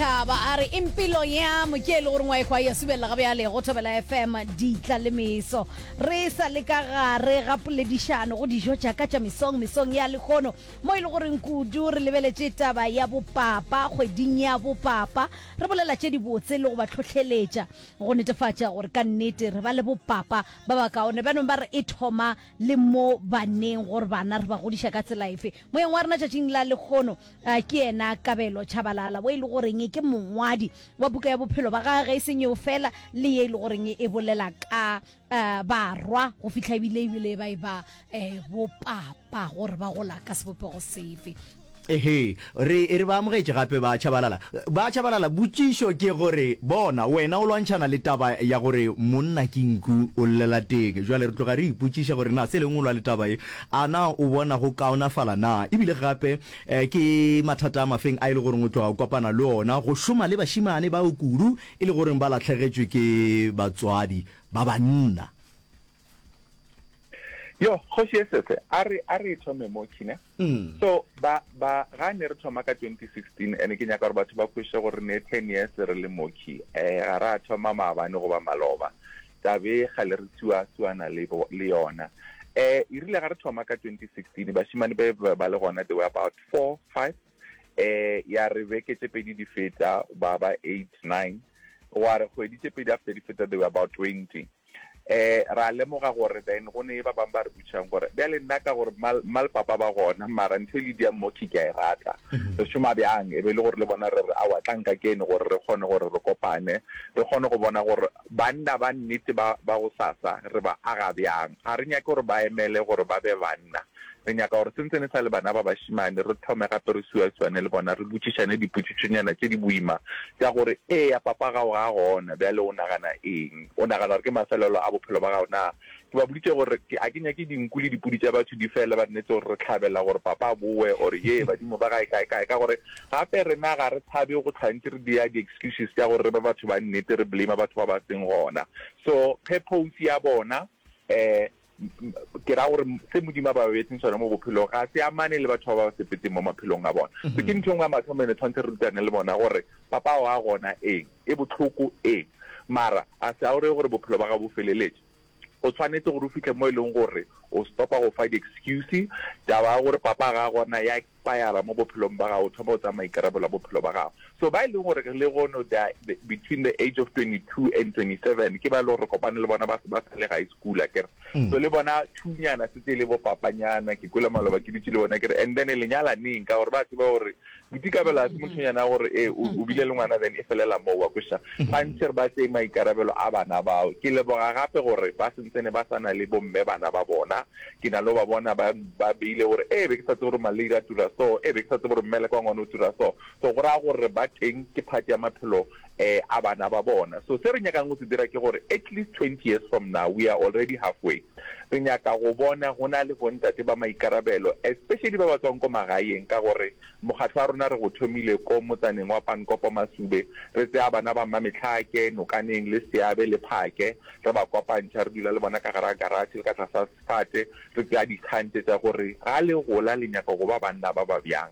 Thaba a re impilo yam ke e le goreng wa ekwa ya subelela ga bjale go Thobela FM ditla le meso re sa le ka gare ga poledišano go dijo tša ka tša mesong mesong ya lekgono mo e le goreng kudu re lebeletše taba ya bopapa kgweding ya bopapa re bolela tše dibotse le go ba tlhohleletša go netefatša gore ka nnete re ba le bopapa ba ba kaone bjanong ba re e thoma le mo baneng gore bana re ba godiša ka tsela efe moyeng wa rena tšatšing la lekgono A ke yena Kabelo Tshabalala wo e le goreng ke mongwadi wa buka ya bophelo ba gage, ge e seng yeo fela le ye e le goreng e bolela ka barwa go fihla ebile ebile ba e ba bopapa gore ba gola ka sebopego sefe. Ehe, re e re ba amogetše gape ba Tshabalala. Ba Tshabalala, potšišo ke gore bona wena o lwantšhana le taba ya gore monna ke nku o llela teng. Bjale re tloga re ipotšiša gore na Selengolwa le taba ye A na o bona go kaonafala na? E bile gape eh, ke mathata a mafeng a e le goreng o tlo a kopana le ona go šoma le bašimane bao kudu e le goreng ba lahlegetšwe ke batswadi ba banna? Yo, Kgoši ye Sese, a re, a re e thome mo, Kina. So, ba, ba, ga ne re thoma ka 2016, ene ke nyaka gore batho ba kweše gore ne ten years re le mo, Ki. Eh, ga ra thoma maabane goba maloba. Tabe ga le re sua suana le, le yona. Eh, e rile ga re thoma ka 2016, bashimane be ba le gona, they were about four, five. Eh, ya re beke tše pedi di feta, ba ba eight, nine. Wa re kgwedi tše pedi after di feta, they were about twenty. Eh, ra lemoga gore then go ne ba bang ba re butšang gore, bjale nna ka gore mma, mma le papa ba gona, mara ntho e le diang moki ke a e rata. Mm-hmm. Re šoma bjang? E be e le gore le bona re re, aowa, tlang ka kene gore re kgone gore re kopane, re kgone go bona gore Banna ba nnete ba, ba gosasa re ba aga bjang? Ga re nyake gore ba emele gore ba be banna. Re nyaka gore se ntse ne sa le bana ba bašemane, re thome gape re suaswane le bona, re botšišane dipotšišonyana tše di boima tša gore, Eya, papa gago ga a gona. Bjale o nagana eng? O nagana gore ke mafelelo a bophelo ba gago na? Ke ba boditše gore ke, a ke nyake dinku le dipudi tša batho di fele ba nnetse gore re hlabela gore papa a bowe or yee badimo ba gae kae kae, ka gore gape rena ga re tshabe go hlwa ntse re dia di excuses tša gore re be batho ba nnete re blame-a batho ba ba seng gona. So purpose ya bona um ke ra gore se Modimo a ba beetseng sona mo bophelong ga se amane le batho ba ba sepetseng mo maphelong a bona. So ke ntho e nngwe ya mathomo ene tshwanetse re rutane le bona gore papa ao a gona eng. E bohloko, ee, mara a se a o re gore bophelo ba gago bo feleletše. O swanetše gore o fihle mo e lego gore o stopa go fa di-excuse. Taba ya gore papa ga a gona ya expire-ra mo bophelong bja gago, o thoma go tsaya maikarabelo a bophelo bja gago. So ba e lego gore re legono, they are between the age of 22 and 27, ke ba e lego gore re kopane le bona ba se ba sa le high school akere. So le bona thunyana setse e le bo papanyana, ke kwele maloba ke dutše le bona ke re, and then lenyalaneng ka gore ba tseba gore Boitikabelo ga se mothonyana gore e o mm-hmm. bile le ngwana then e felela moo wa kweša mm-hmm. gantši re ba tseye maikarabelo a bana bao ke leboga gape gore ba sentsene ba sa na le bomme bana ba bona ke na le ba bona ba ba beile gore e be ke sa tse gore maleira a tura so e be ke sa tse gore mmele kwa ngwana o tura so so go raya gore ba teng ke phati ya maphelo a bana ba bona. So se re nyakang go se dira ke gore at least twenty years from now we are already half way re nyaka go bona go na le bontate ba maikarabelo especially ba ba tswang ko magaeng ka gore mokgatlo wa rona re go thomile ko motsaneng wa Pankopo Masube re tseya bana ba Mmametlhake, Nokaneng le Seabe le Phake re ba kopantšha re dula le bona ka gare ga garage le ka tlasa Tate, re tšea dikgang tše tša gore ga le gola le nyaka go ba banna ba ba bjang,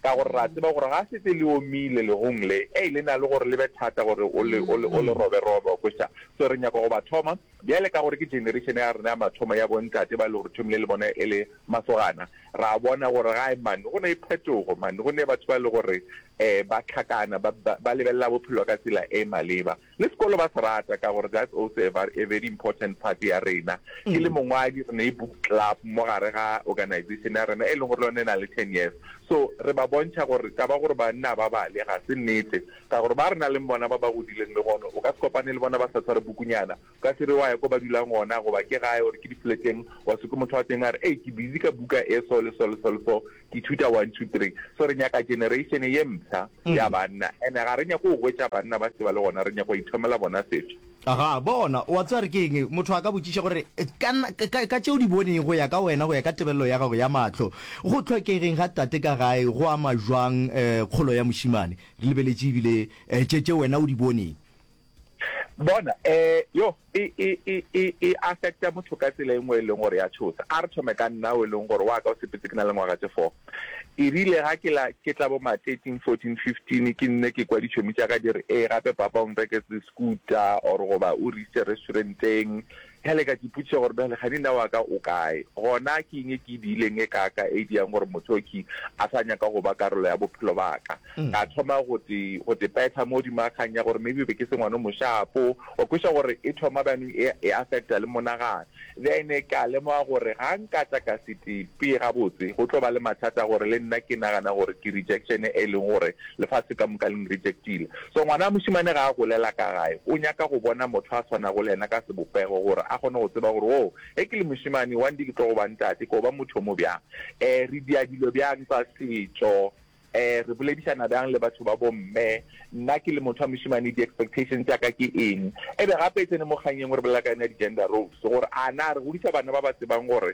ka gore re a tseba gore ga se tše le omile lehung le. Ei, le na le gore le be thata gore o le, o le, o le roberobe, wa kweša. So re nyaka go ba thoma bjale, ka gore ke generation ya rena ya mathomo ya bontate ba lego re thomile le bona e le masogana. Re a bona gore gae mane go na le phetogo, mane go na le batho ba lego gore um ba hlakana, ba, ba, ba lebelela bophelo ka tsela e maleba. Le sekolo ba se rata ka gore that's also a var a very important part ya rena. Ke le mongwadi re ne book club mo gare ga organization ya rena e leng gore le yone e na le ten years. So re ba bontšha gore taba gore banna ba bale ga se nnete ka gore ba re na leng bona ba ba godileng le gone o ka se kopane le bona ba sa tshware bukunyana. O ka se re wa ya ko ba dulang gona goba ke gae or ke di fleteng wa se kwe motho wa teng a re ei ke busy ka buka e so le so le so le so. Ithuta one two three. So re nyaka generation ye mpsha ya banna and ga re nyake go gwetša banna ba se ba le gona, re nyaka go ithomela bona setho. Aha, bona, o a tseba re ke eng? Motho a ka botšiša gore, Ka, ka, ka tše o di boneng, go ya ka wena, go ya ka tebelelo ya gago ya mahlo, go hlokegeng ga tate ka gae go ama jwang, eh, kgolo ya mošemane? Re lebeletše ebile, eh, tše, tše wena o di boneng. bona eh yo e e e e e affecta motho ka tsela e nngwe e leng gore ya tshosa a re thome ka nna o e leng gore wa ka o sepetse ke na le ngwaga tse four e rile ga ke la ke tla bo ma thirteen fourteen fifteen ke nne ke kwa ditšhomi tša ka di re ee gape papa o nreketse scooter or goba o re ise restauranteng Bjale ka ipotšiša gore, Bjale kgani nna wa ka o kae? Gona ke eng e ke e diileng e kaaka e e dirang gore motho o ke a sa nyaka go ba karolo ya bophelo ba ka? Ka thoma go te, go te petha mo godimo ga kgang ya gore maybe be ke se ngwana o moshapo. Wa kweša gore e thoma bjanong e, e affecta le monagano. Then ka lemoga gore ga nka tla ka se tepe gabotse, go tlo ba le mathata gore le nna ke nagana gore ke rejection e leng gore lefase ka moka le nrejectile. So ngwana wa mošemane ga a golela ka gae, o nyaka go bona motho a swanago le yena ka sebopego gore a kgone go tseba gore, Woo, ge ke le mošemane, one day ke tlo go ba ntate, ko ba motho yo mo bjang. E, re dia dilo bjang tsa setšo? E, re boledišana bjang le batho ba bomme? Nna ke le motho wa mošemane, di-expectations tša ka ke eng? Ebe gape e tsene mo kganyeng, o re bolela ka yona di-gender roles, gore a na re godiša bana ba ba tsebang gore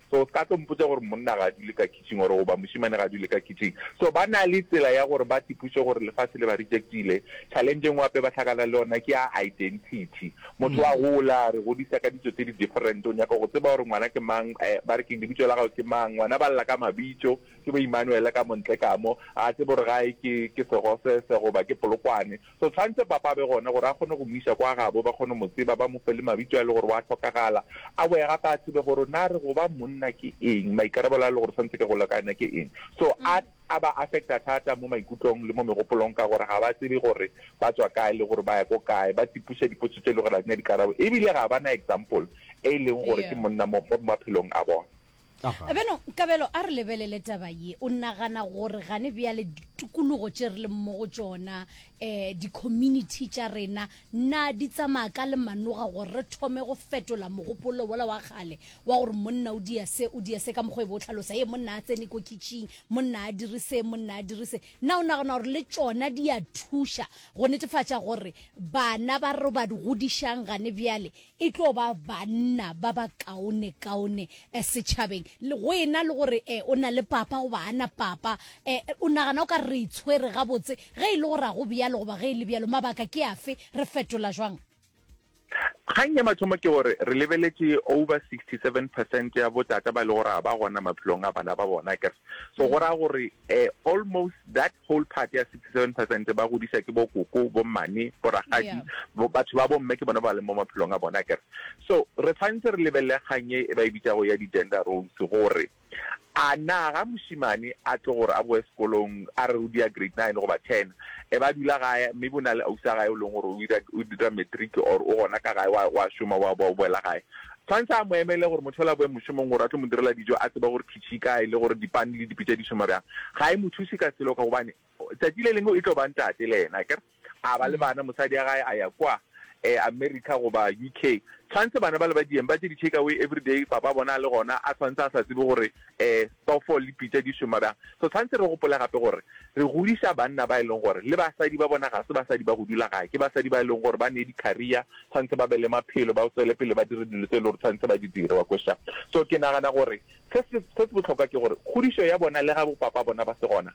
So ska tlo mpotsa gore monna ga a dule ka kitchen or goba mošemane ga a dule ka kitchen. So ba na le tsela ya gore ba tipuše gore lefase le ba rejectile. Challenge e ngwe gape ba hlakana le yona ke ya identity. Motho wa gola, re godisa ka ditso tse di different, o nyaka go tseba gore ngwana ke mang, ba re keng, lebitso la gago ke mang, ngwana ba lla ka mabitso, ke bo Emmanuel ka mo ntle ka mo, ga a tsebe gore gae ke Segosese goba ke Polokwane. Go tshwantse papa a be gone gore a kgone go mo iša kwa gabo, ba kgone go mo tseba, ba mo fe le mabitso a e le gore wa hlokagala, a boe gape a tsebe gore na re go ba monna ke eng, maikarabelo a e le gore tshwantse ke go lekane ke eng. So a a ba affecta thata mo maikutlong le mo megopolong ka gore ga ba tsebe gore ba tswa kae le gore ba ya ko kae, ba tipuša dipotso tše e le gore ga di na dikarabo ebile ga ba na example e e leng gore ke monna mo maphelong a bona. Beno, Kabelo, a re lebelele taba ye. O nagana gore gane bjale ditukulugo tše re leng mo go tšona, um di-community tša rena, na di tsamaya ka le manoga gore re thome go fetola mogopolo wola wa kgale wa gore monna o dia se, o dia se ka mokgwa e be o tlhalosa, ye monna a tsene ko kitšing, monna a dire se, monna a dire se. Na o nagana gore le tšona di a thuša go netefatša gore bana ba re ba godišang gane bjale E tlo ba banna ba ba kaonekaone setšhabeng. Go e na le gore o na le papa goba ga na papa, o nagana o ka re re itshwere gabotse? Ge e le gore ga go bjalo goba ge e le bjalo, mabaka ke afe? Re fetola jwang? Kgang ya mathomo ke gore re lebeletše over 67 percent ya botata ba e le gore ga ba gona maphelong a bana ba bona, akere? So go raya gore almost that whole part ya 67 percent ba godisa ke bo koko, bo mmane, bo ragadi, bo batho ba bo mme ke bona ba leng mo maphelong a bona akere. So re tshwanetse re lebelele kgang e e ba e bitsago ya di gender roles gore a na ga moshimane a tlo gore a boe sekolong a re o dia grade nine goba ten e ba dula gae maybe o na le ausi a gae o leng gore o dira matric or o gona ka gae wa shoma wa boela gae Tshwanetse a mo emele gore motho yola a boe mošomong gore a tlo mo direla dijo, a tseba gore khitšhi e kae le gore dipane le dipitša di šoma bjang. Ga e mo thuse ka selo ka gobane tšatši le lengwe e tlo ba ntate le yena, akere, a ba le bana, mosadi ya gae a ya kwa eh, America goba UK. Tshwanetse bana bale ba dieng, ba je di-take away everyday, papa bona a le gona, a tshwanetse a sa tsebe gore Ee, phoofolo le pitša di šoma bjang. So tshwanetse re gopole gape gore re godiša banna ba e leng gore le basadi ba bona ga se basadi ba go dula gae, ke basadi ba e leng gore ba ne di-career, tshwanetse ba be le maphelo, ba tswele pele ba dire dilo tse e leng gore tshwanetse ba di dire, wa kweša. So ke nagana gore se se bohlokwa ke gore kgodišo ya bona le ga bo papa bona ba se gona,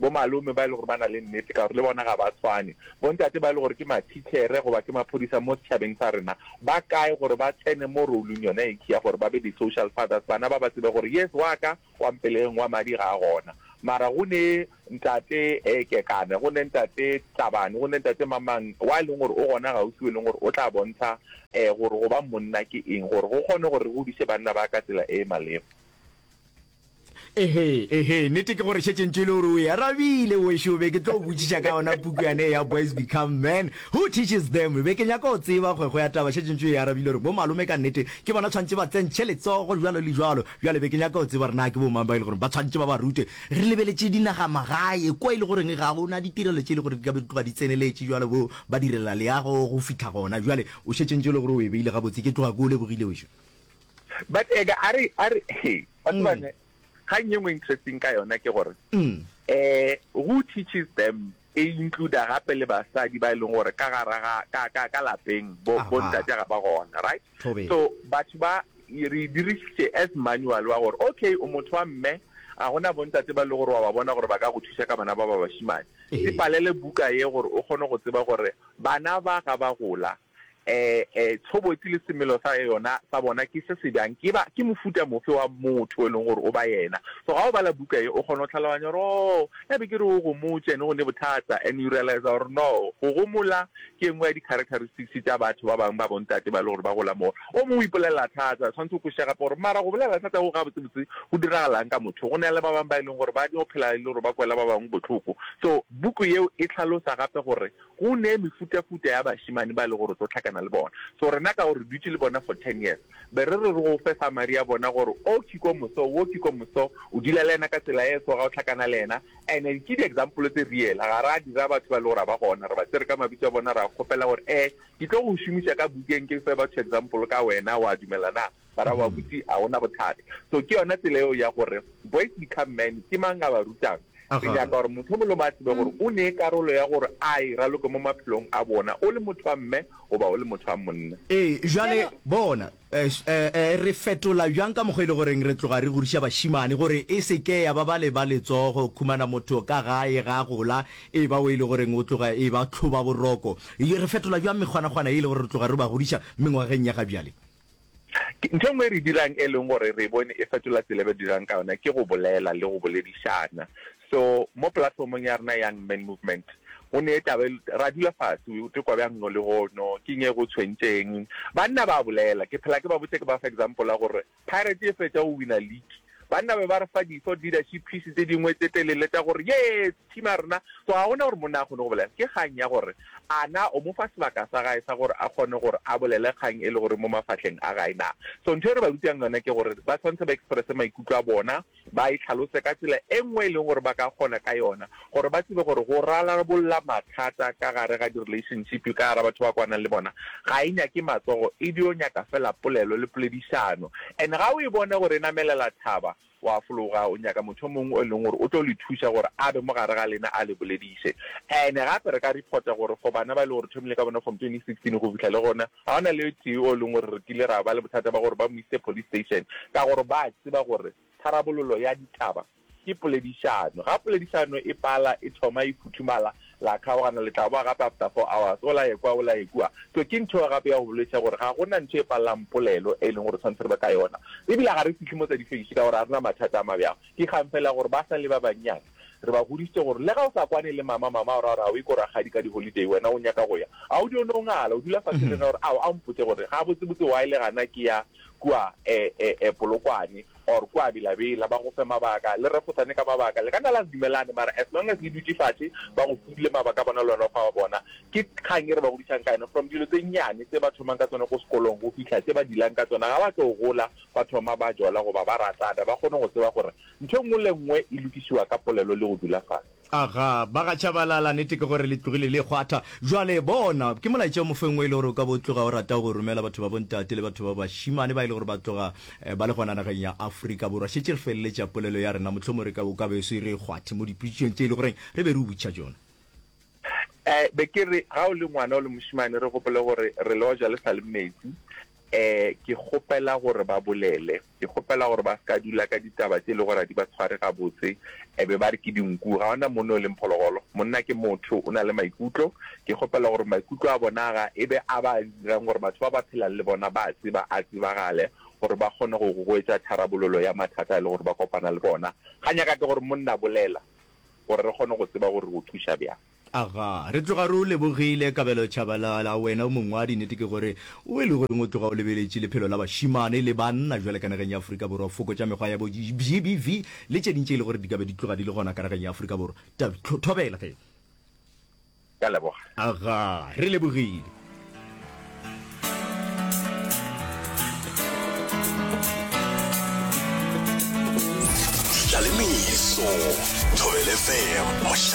Bomalome ba e le gore ba na le nnete ka gore le bona ga ba tshwane. Bontate ba e le gore ke mathitšhere goba ke maphodisa mo setšhabeng sa rena ba kae gore ba tsene mo role-ng yona ye ya gore ba be di-social fathers, bana ba ba tsebe gore yes wa ka wa mpeleng wa madi ga a gona. Mara go ne Ntate Kekana, go ne Ntate Tlabane, go ne Ntate mang-mang wa e leng gore o gona gaufi o e leng gore o tla bontsha gore go ba monna ke eng gore go kgone gore re godiše banna ba ka tsela e e maleba. Ehe, ehe, nete ke gore šetše ntše e le gore o e arabile wešo be ke tlo botšiša ka yona puku yane ya boys become man who teaches them be ke nyaka go tseba kgwekgo ya taba šetše ntše e arabile gore bo malome ka nnete ke bona tshwanetse ba tsentšhe letsogo jalo le jalo bjale be ke nyaka go tseba gore na ke bomang ba e le gore ba tshwanetse ba ba rute re lebeletše dinagamagae kwa e le goreng ga gona ditirelo tše e le gore di ka be di tloga di tseneletše jalo bo ba direla leago go fitlha gona jale o šetše ntše e le gore o e beile gabotse ke tloga ke o lebogile wešo but eka a re a re he wa tseba ne ga nngwe ngwe interesting ka yona ke gore eh who teaches them e include gape le basadi ba e leng gore ka gara ga ka ka ka lapeng bo Aha. bo ntate ga ba gona right Thobela. so batho ba re dirisitse as manual wa gore okay o motho wa mme a gona bontate ba e le gore wa ba bona gore ba ka go thusa ka bana ba ba bashimane Ehe. e palele buka ye gore o kgone go tseba gore bana ba ga ba gola Ee, tshobotsi le semelo sa yona sa bona ke se se bjang, ke ba ke mofuta mofe wa motho o e leng gore o ba yena. So ga o bala buka ye, o kgona go tlhaloganya gore oo, ya be ke re o gomotše and go ne bothata, and you realize gore no, go gomola ke e nngwe ya di-characteristics tša batho ba bangwe ba bontate ba e le gore ba gola moo. O mongwe o ipolelela thata, tshwanetse o kwešiša gape gore mara go bolelela thata go gabotsebotse go diragalang ka motho. Go na le ba bangwe ba e leng gore ba nyako phela e le gore ba kwela ba bangwe bohloko. So buku yeo e tlhalosa gape gore Go ne mefutafuta ya bašemane ba e lego gore o tlo hlakana le bona. So rena ka gore re dutše le bona for ten years, be re re re go fe summary ya bona gore o ke ko moso, wo ke ko moso, o dula le yena ka tsela e so, ga o hlakana le yena. And-e ke di-example tse real, ga ra dira batho ba e lego gore ga ba gona, re ba tsere ka mabitso a bona, ra kgopela gore ee ke tlo go šomiša ka bukeng ke fe batho example ka wena, wa dumela na? Bara wa butši a ona bothata. So ke yona tsela eo ya gore boys become men ke mang a ba rutang. Re nyaka gore motho mongwe le mongwe a tsebe gore o ne karolo ya gore a e raloke mo maphelong a bona o le motho wa mme goba o le motho wa monna. Ee, jwale bona eh re fetola bjang ka mokgwa e le goreng re tloga re goriša bašimane gore e se ke ya ba ba le ba letsogo khumana motho ka gae ga gola e ba o e le goreng o tloga e ba tlhoba boroko. Re fetola bjang mekgwanakgwana e le gore re tloga re ba godiša mengwageng ya ga bjale? Ntho e nngwe e re dirang e leng gore re e bone e fetola tsela e re dirang ka yona ke go bolela le go boledišana. So mo platform-ong ya rena Young Men Movement go ne taba e, ra dula fase o tekwa bjang no le go no, ke eng e go tshwentšeng. Banna ba bolela, ke phela ke ba botša ke ba fa example ya gore Pirates e fetša go win-a league Banna be ba re fa di-thought leadership piece tse dingwe tse telele tša gore, Yes! Team ya rena! So ga go na gore monna a kgone go bolela. Ke kgang ya gore a na o mo fa sebaka sa gae sa gore a kgone gore a bolele kgang e le gore mo mafahleng a gae na. So ntho e re ba rutang yona ke gore ba tshwanetse ba expresse maikutlo a bona, ba e tlhalose ka tsela e nngwe e leng gore ba ka kgona ka yona gore ba tsebe gore go rarabolla mathata ka gare ga di-relationship ka gara batho ba kwanang le bona ga e nyake matsogo e dio nyaka fela polelo le poledišano. And ga o e bone gore e namelela thaba wa fologa o nyaka motho o mongwe o e leng gore o tlo le thuša gore a be mo gare ga lena a le bolediše. And gape re ka reporta gore for bana ba e le gore thomile ka bona from 2016 go fihla le gona ga gona le tee o e leng gore re kile ra ba le bothata ba gore ba mo ise police station ka gore ba tseba gore tharabololo ya ditaba Ke poledišano. Ga poledišano e pala, e thoma, e futhumala, la kgaogana, le tla boa gape after four hours, o la ekwa, o la ekua. So ke ntho eo gape ya go bolediša gore ga gona ntho e palelang polelo e leng gore tshwanetse re be ka yona. Ebile ga re fihle mo tsa difeiši ka gore ga re na mathata a ma bjalo. Ke kgang fela ya gore ba sa le ba bannyane re ba godišitše gore le ga o sa kwane le mama, mama o ra gore a o ye ko rakgadi ka di-holiday, wena o nyaka go ya, a o dio no ngala, o dula fase le nna gore ao a mpotše gore gabotsebotse why le gana ke ya kua Polokwane. or kua bilabila ba go fe mabaka le refosane ka mabaka le ka nna la se dumelane mara as long as le dutše fatše ba go file mabaka a bona le wena o fa wa bona ke kgang e re ba godišang ka yona from dilo tse nnyane tse ba thomang ka tsona ko sekolong go fihla tse ba dilang ka tsona ga ba tlo gola ba thoma ba jola goba ba ratana ba kgone go tseba gore ntho e nngwe le nngwe e lokišiwa ka polelo le go dula fatše. Aga, ba ga Tshabalala, nete ke gore le tlogile le kgwatha. Bjale, bona, ke molaetša o mofeng wo e le gore o ka bo o tloga o rata go o romela batho ba bontate le batho ba bašimane ba e le gore ba tloga ba le gona nageng ya Afrika Borwa. Šetše re feleletša polelo ya rena, mohlomongwe re ka, o ka be o se re kgwathe mo dipotšišong tše e le goreng re be re o botša tšona. Ee, be ke re, ga o le ngwana o le mošimane, re gopole gore re le oja le sa le metsi, Ee, ke kgopela gore ba bolele. Ke kgopela gore ba se ka dula ka ditaba tše e lego gore ga di ba tshware gabotse, e be ba re ke dinku. Ga go na monna o leng phologolo. Monna ke motho, o na le maikutlo. Ke kgopela gore maikutlo a bona aga e be a ba dirang gore batho ba ba phelang le bona ba a tseba, a tsebagale, gore ba kgone go gogoetša tharabololo ya mathata a e lego gore ba kopana le bona. Ga nyakate gore monna bolela gore re kgone go tseba gore re go thuša bjang. Aga, re tloga re o lebogile, Kabelo Tshabalala. Wena o mongwadi, nnete ke gore o e lego eng o tloga o lebeletše lephelo la bašemane le banna bjale ka nageng ya Afrika Borwa, fokotša mekgwa ya bo GBV le tše ding tše e le gore di ka be di tloga di le gona ka nageng ya Afrika Borwa. Tab, Thobela ge. Ka leboga. Aga, re lebogile. Tlalemeso, Thobela FM.